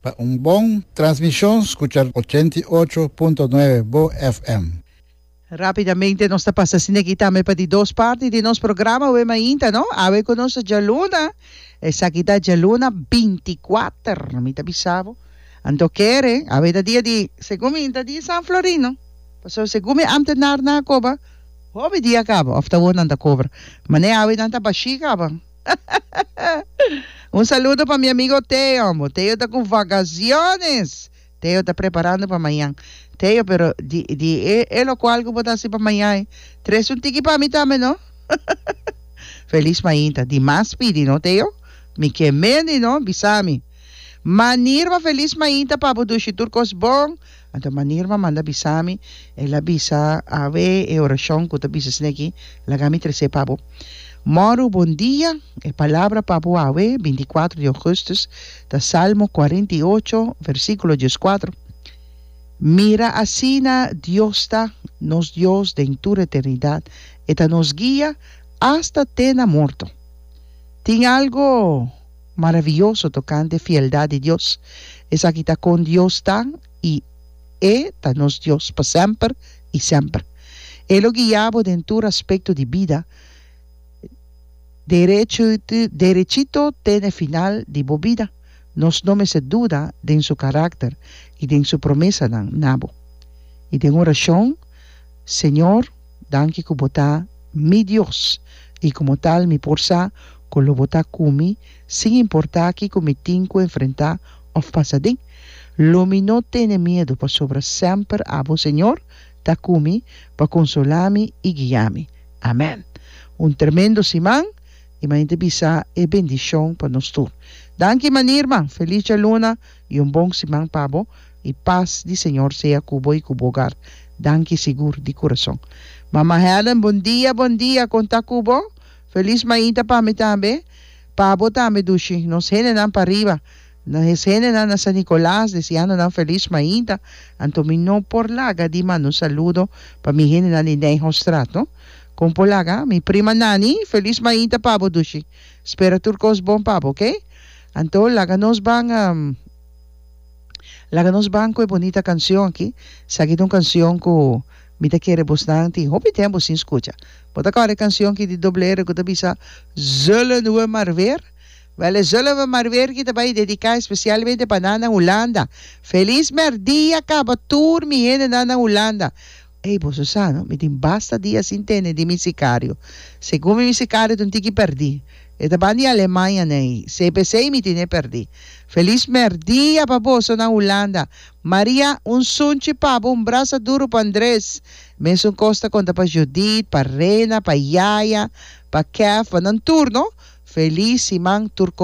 Pa un bon transmishon skucha ochenta i ocho punto nuebe bo FM. Rapidamente nos ta pasa sineki tambe pa di dos parti di nos programa awe mainta no. Awe ku nos djaluna, esaki ta djaluna binti kuater, mi ta bisa bo. Anto kere, awe ta dia di, segun mi ta dia San Florino, pasobra segun mi antenarnan a koba, hopi dia kaba of ta wor nan ta kobra. Mane awe nan ta bashi kaba. Un saludo pa mi amigo Teo ambo. Teo ta cu vagaciones. Teo ta preparando pa mayan. Teo pero di di e e locual cu bo ta haci pa mayan e tres un tiki pa mi tambe no. Feliz mainta. Di mas pidi no Teo. Mi ke mendi no bisa mi. Manirba feliz mainta pa bo dushi tur cos bon. Anto manera m'a manda bisa mi, el a bisa, Awe e orashon ku ta bisa esei aki, laga mi tres'é pa bo. Mòru bon dia, e palabra pa bo awe, binti-kuatro di ougùstus, ta Salmo kuarenta i ocho, versíkulo dieskuatro, Mira asina Dios ta, nos Dios den tur eternidat, e ta nos guia asta te na morto. Tin algu? Maraviyoso tokante fieldat di Dios. Esaki ta kon Dios ta i E ta nos Dios pa semper i semper. E lo guia bo den tur aspekto di bida. Derecho derechito te na e final di bo bida. Nos no mester duda den su karakter i den su promesanan na bo. I den orashon, Señor. Danki ku bo ta mi Dios, i komo tal mi por sa ku lo bo ta ku mi sin importá kiko mi tin ku enfrentá òf pasa den. Lo mi no tene miedu, pasobra semper abo, Señor, ta ku mi pa konsolá mi i guia mi. Amèn. Un tremendo siman, i manera di bisa e bendishon pa nos tur. Danki, manirman. Feliz djaluna. y un bon siman pa bo y paz di Señor sea cu bo y cu bo hogar. Danki sigur di curazon. Mama Helen bon dia bon dia con ta cu bo? Feliz mainta pa mi tambe. Pa bo tambe Dushi. Nos hendenan pariba. Nos hendenan na San Nicolas deseando nan feliz mainta. Anto mi no por laga di manda un saludo pa mi hendenan di Nijhostraat no. Con por laga? Mi prima Nani feliz mainta pa bo Dushi. Spera tur cos bon pa bo ok. Anto laga nos ban laga nos ban ku e bonita kansion aki sa aki ta un kansion ku mi ta kere bosnan tin hopi tempu sin skucha bo ta kòrda e kansion aki di Doble R ku ta bisa Zullen we maar weer wèl e Zullen we maar weer aki ta bai dediká espesialmente pa nan na Hulanda Feliz merdia kaba tur mi hendenan na Hulanda. Ey boso sa no, mi tin basta dia sin tene di mi sicario. Segun mi, mi sicario ta un tiki perdi. E ta ban di Alemania nei. CPC y mi tin e perdi. Feliz merdia pa boso na Hulanda. Maria, un sunchi pa bo, un brasa duro pa Andres. Mesun cos ta conta pa Judith, pa Rena, pa Yaya, pa Kev, pa nan tur no. Feliz siman tur.